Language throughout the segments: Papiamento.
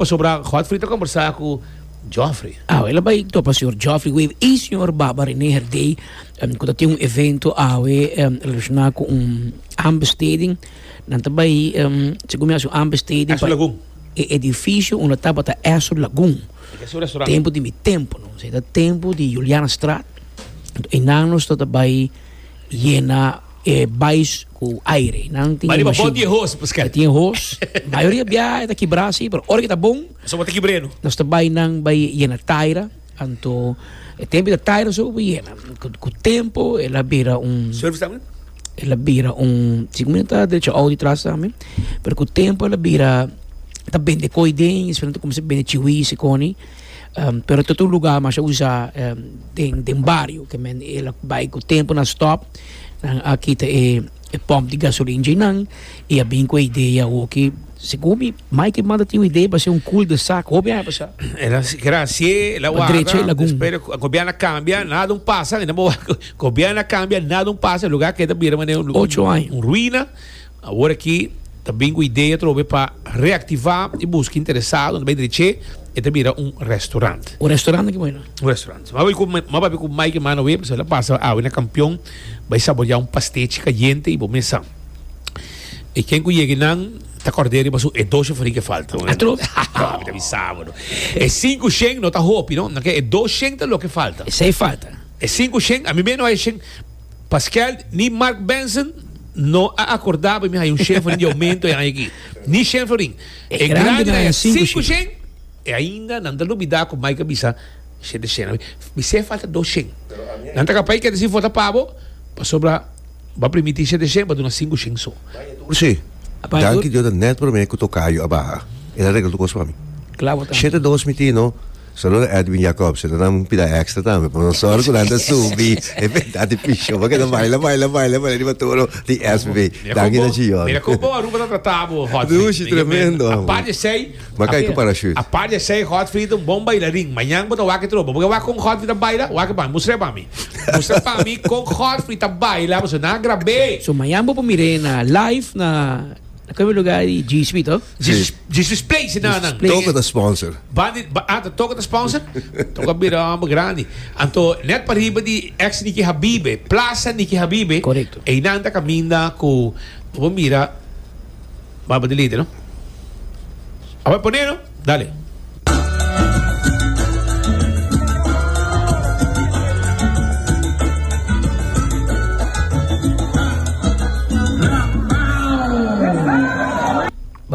Pasobra Godfrey ta kombersá ku Geoffrey. Awe el a bai topa señor Geoffrey Wade i señor Baba Renee Herdey ku ta tin un evento awe relashoná ku un aanbesteding. Nan ta bai segun mi a haci un aanbesteding pa e edifisio unda tabata Astor Lagoon tempu di mi tempu no. Esei ta tempu di Julianastraat. Einan nos tabata bai yena. E bais ku aire. Nan tin e mashin. Pariba bot di e hos pa skel. E tin e hos. Mayoria biaha e ta kibrá si, pero ora ku e ta bon. Pasobra ta kibr'é no. Nos ta bai nan bai yena taira. Anto e tempu ta taira so bo yena. Ku tempu e la bira un. Surf tambe? E la bira un, si ku mi ta drecha oudi tras tambe. Pero ku tempu e la bira ta bende koi den, e ta kuminsá bende chiwis e koni. Um, pero ta tur lugá masha usá um, den, den bario, ke men e la bai ku tempu na stop, nan a kita e, e pòmp di gasolina dje nan, i a bin ku e idea awoki, segun mi, Maikie manda tin un idea pa hasi un cul de sac, hopi nan e pasá. E la keda hasié, e la Pa waka, drecha e lagun. despues de a gobièrnu a kambia, nan a dun pasa, e nan bo wak, gobièrnu a kambia, nan a dun pasa, e lugá keda bira manera un, Ocho aña. un ruina. Awor aki ta bin ku idea atrobe pa reaktivá e buska interesado na bai drech'é e ta bira un restorant. Un restorant aki bueno. Un restorant. M'a bai ku m'a papia ku Mike Emanué pasobra el a pasa awe na Kampion bai saboriá un pastechi kayente i bo mesa. E ken ku yegi nan ta kòrd'é riba su e dos sheferi ke falta. Atrobe. Haha mi ta bisa bo no. E sinku shen no ta hopi no. Nan ke e dos shen ta loke falta. E seis falta. E sinku shen ami mei no hay e shen. Paskèl ni Mark Benson no a akordaba mi haya un shènfering di oumento e aña aki. Ni shènfering. E grandenan haya sinku shen i ainda nan ta lubidá ku Mike a bisa, Shete shennan. Bisé e falta dos shen. Nan ta kapá i keda si vota pa bo, pasobra bo a permití shete shen, bo a duna sinku shen so. José, danki Dios dat nèt promé ku tokayu a baha. El a regla tur kos pa mi. Shete dos mi tin, no? Solo Edwin Jacobsen ta nan pida extra tambe por nos sorry cu nan ta subi e verdad di piso pa keda baila baila baila baila riba toro di SB danki na Chillon Mira con bo Aruba ta trata bo Hot Feet Dushi tremendo amo Apart di esey Ma kai cu parachute Apart di esey Hot Feet un bon bailarin Mañan bo ta wak e tropa bo ke wak con Hot Feet ta baila wak e pa mi mustre pa mi mustre pa mi con Hot Feet ta baila pasobra nan a grab'e. So mañan bo por mir'e na live na. Kami lugar di GSP to? Jesus, Jesus Place e nanan. Toca ta sponsor. Bandi, ba, ah, ta toca ta sponsor? toca bira hombre grande. Anto, net pa riba di ex Niki Habibe, Plaza Niki Habibe. Correcto. E nan ta caminda cu, bo mira, baba de lady, no? Awe pone, no? Dale.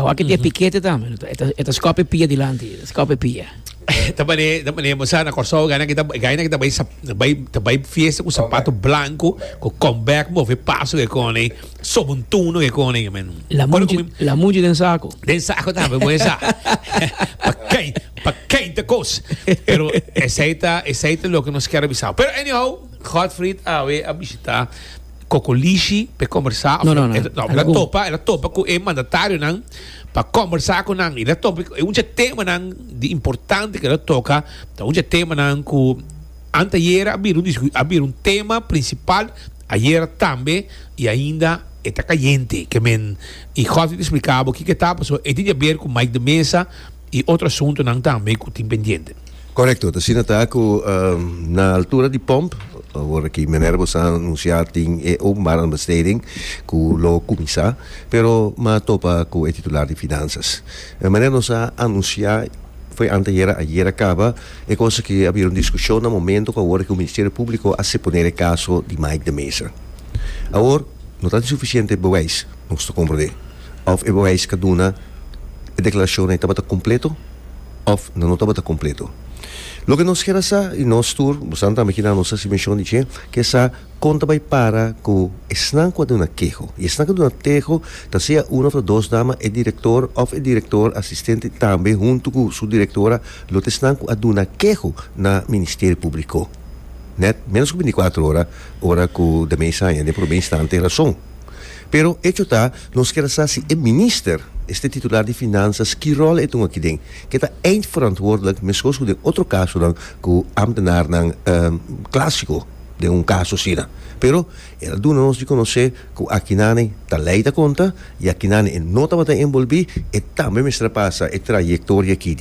Wak e pikete tambe. E ta skop e pia dilanti. E ta skop e pia. ta bane ta bane mo sa na Corsou gaina kita gaina kita bai bai ta bai fiesta ku sapato blanco ku comeback mo ve paso ke kone Sobon tuno ke kone ke men. La muchi, la muchi den sako. Den sako tambe moe sa. pa kei, pa kei ta kos. Pero esei ta, esei ta loke nos kier a bisao. Pero anyhow, Godfried awe a bishita Kokolishi pe kombersa. No, no, no. El a topa, el a topa ku e mandatarionan pa kombersa ku nan. El a topa, e un dje temanan di importante ku el a toka ta un dje temanan ku. Anteayer a bira un discu-, a bira un tema principal, ayer tambe y ainda e ta cayente, que men y Godfrey ta explica bo kico e ta, pasobra e tin di haber cu Mike de Meza y otro asuntonan tambe cu tin pendiente. Correcto, ta asina ta cu na altura di pump, ora ki Minerva nos a anuncia tin e openbare aanbesteding cu lo cuminsa, pero mi a topa cu e titular di Finanzas. Manera nos a anuncia, foi anteayer, ayer a caba. E cosa ke a bira un diskushon na momento ku awor e ku Ministerio Publiko a seponé e kaso di Mike de Mesa. Awor no ta di sufisiente e beweis, nos ta komprendé, of e beweis ka duna e deklarashonnan tabata kompleto of nan no tabata kompleto. Loke nos keda sa, i nos tur, bosan tambe kina nos hasi menshon di dje, ke sa kon ta bai para ku esnan ku a duna keho. I esnan ku a duna teho ta sea uno of ta dos dama e direktor of e direktor asistente tambe huntu ku su direktora, Lo ta esnan ku a duna keho na Ministerio Públiko nèt ménos ku binticuatro ora ora ku de mes aña den promé instante rason. Pero echo ta nos kier a sa si e minister, este titular di Finanzas ki ròl e tuma akiden, ke ta eindverantwoordelijk meskos ku den otro kasonan ku ámtenarnan klásiko den un kaso asina. Pero el a duna nos di konosé ku akinane ta lei ta konta i akinane e no tabata enbolbí e tambe mester a pasa e trayektoria ki